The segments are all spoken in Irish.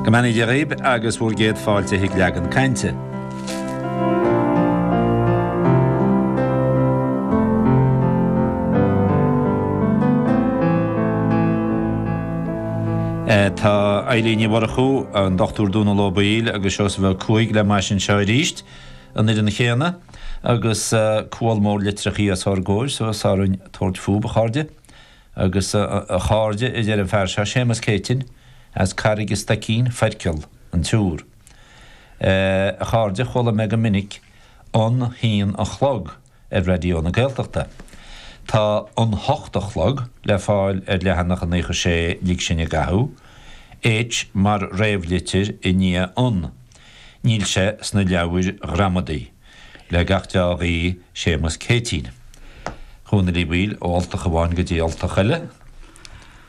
Go mbeannaí Dia dhaoib agus bhur gcéad fáilte chuig Leagan Cainte. Tá Eibhlín Ní Mhurchú, an Dr. Dónal Ó Baoill agus Seosamh Ó Cuaig le m'ais anseo aríst an fhoireann chéanna agus gabháil mór litreachaí os ár gcomhair so is orainn tabhairt fúthu, a chairde. Agus a chairde, a deir an fear seo, Séamas Céitinn, as Carraig a' Stoicín, Foirceal, an tIúr. A chairde, chuala mé go minic An hAon a Chlog ar Raidió na Gaeltachta. Tá An hOcht a Chlog le fáil ar leathanach 96 Lig Sinn i gCathú, H mar réamhlitir i ndiaidh An. Níl sé sna leabhair ghramadaí. le gach deá ghuí, Séamus Céitinn. A Dhónaill Uí Bhaoill ó ultach amháin go dtí ultach eile.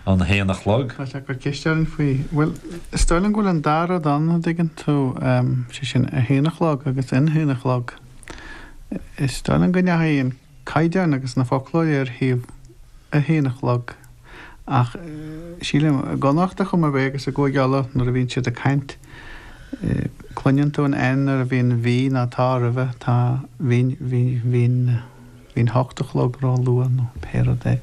An h-aon a chlog. Céard is eol dúinn faoi, bhuel, is dóigh liom go bhfuil an dá rud ann, an dtuigeann tú, sé sin, a h-aon a chlog agus an h-aon a chlog. Is dóigh liom go ndeachaigh an. caighdeán agus na foclóirí ar thaobh a haon a chlog, ach sílim i gConnachta chomh maith b'fhéidir agus i gCúige Uladh nuair a bhíonn siad ag caint, cluineann tú an N nuair a bhíonn bhí ná tá roimhe, tá, bhí, bhí an hocht a chlog ró luath nó pé rud é.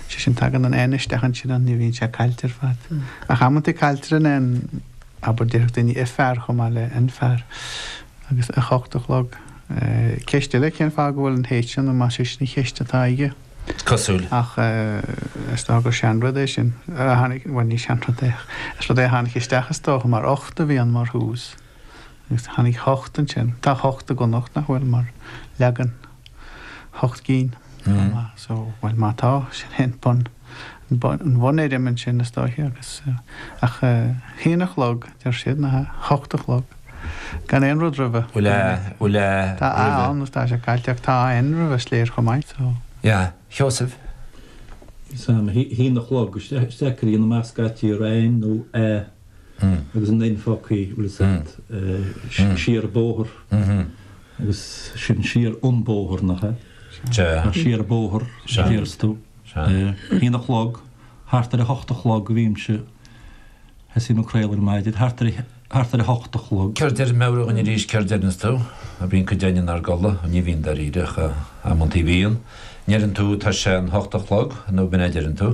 Sé sin, tagann an N isteach ansin an ní bhíonn sé caillte ar fad. Ach amantaí cailltear an N, abair, déarfadh daoine a' fear chomh maith le an fear, agus a hocht a chlog. Ceist eile cén fáth go bhfuil an H ann, nó más é sin an cheist atá aige. Is cosúil. Ach is dócha gur seanrud é sin a tháinig, bhuel ní seanrud é ach is rud é a tháinig isteach is dócha mar ocht a bhí ann mar thús agus tháinig hocht ansin. Tá hocht i gConnacht nach bhfuil mar leagan hocht gcinn, so bhuel má tá, sin é an bun. an bhunfhoirm ansin is dóiche agus ach a haon a chlog deir siad ná a hocht a chlog gan aon rud roimhe. Bhfuil a, bhfuil a roimhe? Tá a ann nó tá sé caillte ach tá AN roimhe is léir chomh maith so. A Sheosaimh? Is a'm, a haon a chlog, is deacair a dhéanamh amach scaití ar AN nó A agus an N slogthaí, bhfuil 'fhios a'd, siar an bóthar agus sin siar an bóthar nach ea? Sea. Siar an bóthar, deir tú. Sea, ar a haon a chlog, thart ar a hocht a chlog, a bhímse, thosaím ag craoladh ar maidin, thart ar, thart ar a hocht a chlog. Céard deir meabhraigh dhúinn arís céard deireanns tú, a bhíonn cuid againn inár gcodladh, ní bhíonn dáiríre ach amantaí bhíonn, ndeireann tú tá sé an hocht a chlog, nó ab in é a deireann tú.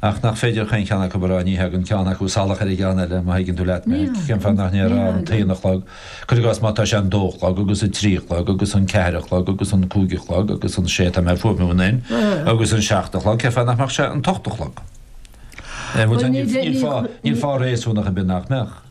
ach nach féidir chaon cheann acu a rá, ní thagann ceann acu salach ar an gceann eile, má thuigeann tú leat mé. Cén fáth nach ndéarfá an t-aon a chlog, cuir i gcás, má tá sé an dó a chlog, agus an trí a chlog, agus an ceathair a chlog, agus an cúig a chlog, agus an sé, tá mé ag fuaimniú an an, agus an seacht a chlog, cén fáth nach mbeadh sé an t-ocht a chlog? Níl fáth réasúnach ar bith nach mbeadh.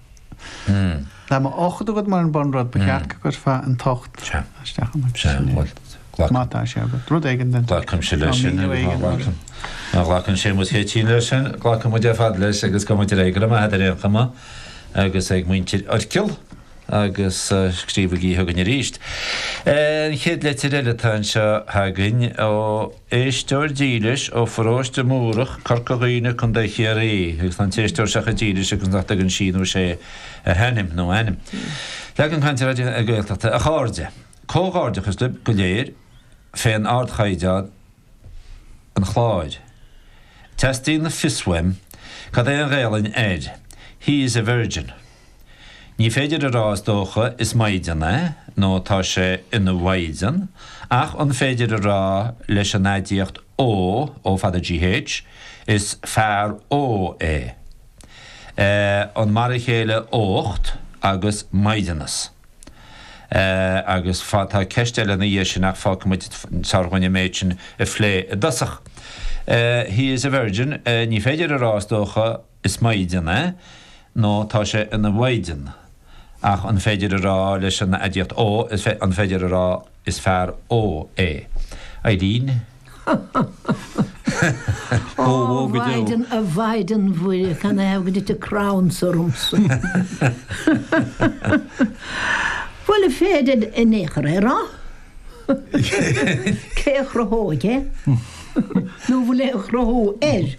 Tá ocht agat mar an bunrud, ba cheart go gcuirfeá an t-ocht isteach amuigh sin é. Má tá sé agat. Rud éigin den sórt. Glacaimse leis sin. Nó míniú éigin mar sin. Má ghlacann Séamus Céitinn leis sin. Glacfaidh muid ar fad leis agus gabhfaidh muid ar aghaidh, go raibh maith agat ar aon chuma agus ag muintir Oirchill agus scríobhaigí chugainn arís. An chéad leitir eile atá anseo againn ó. Éisteoir dílis ó Pharóiste Múrach, Corca Dhuibhne, Co. Chiarraí, agus tá an t-éisteoir seo chomh dílis agus nach dtugann sí nó sé a hainm nó a ainm. Leagan Cainte, Raidió na Gaeltachta, a chairde. Comhghairdeachas libh go léir fén ardchaighdeán an chláir. Teastaíonn fios uaim cad é an Ghaelainn ar He is a virgin. Ní féidir a rá, is dócha, is maighdean é, nó tá sé ina mhaighdean, ach an féidir a rá leis an aidiacht ógh, ó fada gh, is fear ógh é. Eh, an mar a chéile ócht agus maighdeanas? Eh, agus fá, tá ceist eile ina dhiaidh sin, ach fágfaidh muid, is fearr dhúinn an méid sin a phlé i dtosach. Eh, he is a virgin, eh, ní féidir a rá, is dócha, Is Maighdean é, nó tá sé ina Mhaighdean. Ach an féidir a rá leis an aidiacht ógh, an féidir a rá is fear ógh é? Eileen? Ó, Mhaighdean, a Mhaighdean Mhuire, cén fáth ar thit an crann seo ormsa? Bhuel, is féidir ar aon chor é a rá. Cé a chruthóidh é? Nó bhfuil aon chruthú air?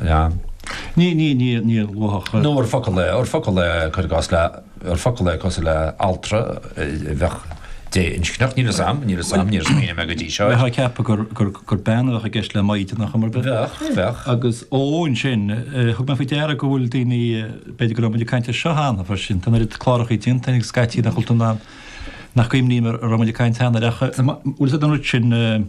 Ea. Ní, ní, ní, níor luafadh. Nó ar focal é, ar focal é, cuir i gcás, le, ar focal é cosúil le altra a bheadh dé-inscneach. Níl a fhios a'm, níl a fhios a'm, níor smaoinigh mé go dtí seo air. Bheifeá ag ceapadh gur, gur, gur bean a bheadh i gceist le maighdean nach mbeadh? Bheadh, bheadh. Agus, ó, ansin, thug mé faoi deara go bhfuil daoine, b'fhéidir go raibh muid ag caint air seo cheana freisin, tá an oiread cláracha déanta againn, scaití nach bhfuil tú in ann, nach gcuimhním a raibh muid ag caint cheana air ach, bhfuil siad an rud sin,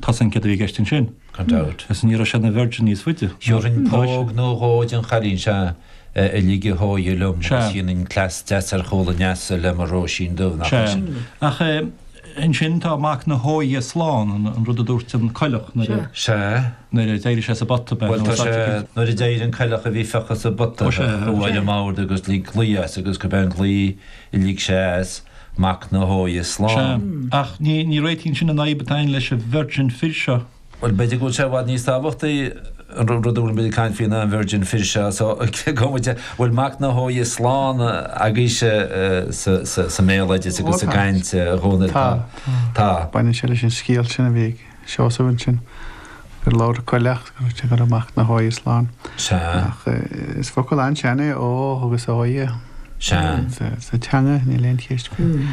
Tá san ceadaithe i gceist ansin, gan dabht, is ní raibh sé ina Virgin níos faide. Gheobhainn póg nó dhó den chailín seo a ligfeadh a hóighe liom is dhéanfainn cleas deas ar chúl an leasa le mo Róisín Dubh, nach é sin? Sea. Ach ansin tá mac na hÓighe slán, an rud a dúirt an coileach nuair a. Sea. nuair a d'éirigh sé sa bpota. Bhuel, tá sé, nuair a d'éirigh an coileach a bhí fiuchta sa bpota, chuaigh ar an mbord agus lig glao as agus go binn glé. Lig sé as, mac na hÓighe slán. Ach ní réitíonn sin an fhadhb atá againn leis an virgin fir seo. Bhuel, b'fhéidir go bhfuil sé i bhfad níos tábhachtaí an rud a bhfuilim ag caint faoi ná an virgin fir seo, so cé go bhfuil mac na hÓighe slán agaibhse sa mbéaloideas agus sa gcaint dhomhain ar fad, tá. Tá, tá. Baineann sé leis an scéal sin a bhí ag. Seosamh ansin. Gur labhair an coileach go raibh sé ag rá mac na hÓighe slán. Sea. Ach is focal an-sean é ógh agus óighe. Sea. Sa teanga níl aon cheist faoi.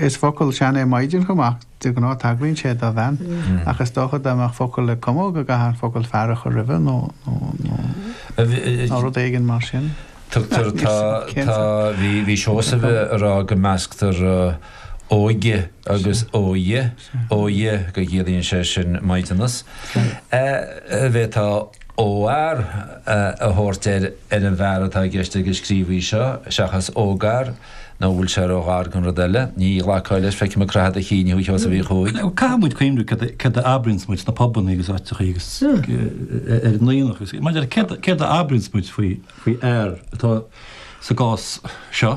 Is focal sean é maighdean chomh maith ach de ghnáth tagraíonn sé do bhean. Ach is dócha dá mbeadh focal le cumadh go gcaithfeá an focal fear a chur roimhe nó rud éigin mar sin. Tugtar tá tá bhí Seosamh ag rá go measctar óige agus óighe, óighe go gciallaíonn sé sin maighdeanas, an bhféadfá óghfhear a thabhairt ar an bhfear atá i gceist ag an scríobhaí seo seachas ógfhear, nó an bhfuil sé róghar don rud eile? Ní ghlacfá leis, feicim ag croitheadh do chinn thú a Sheosaimh Uí Chuaig. Caithfimid cuimhneamh céard a abraíonns muid sna pubanna agus áiteachaí agus ar an aonach agus maidir le céard a abraíonns muid faoi fhear atá sa gcás seo.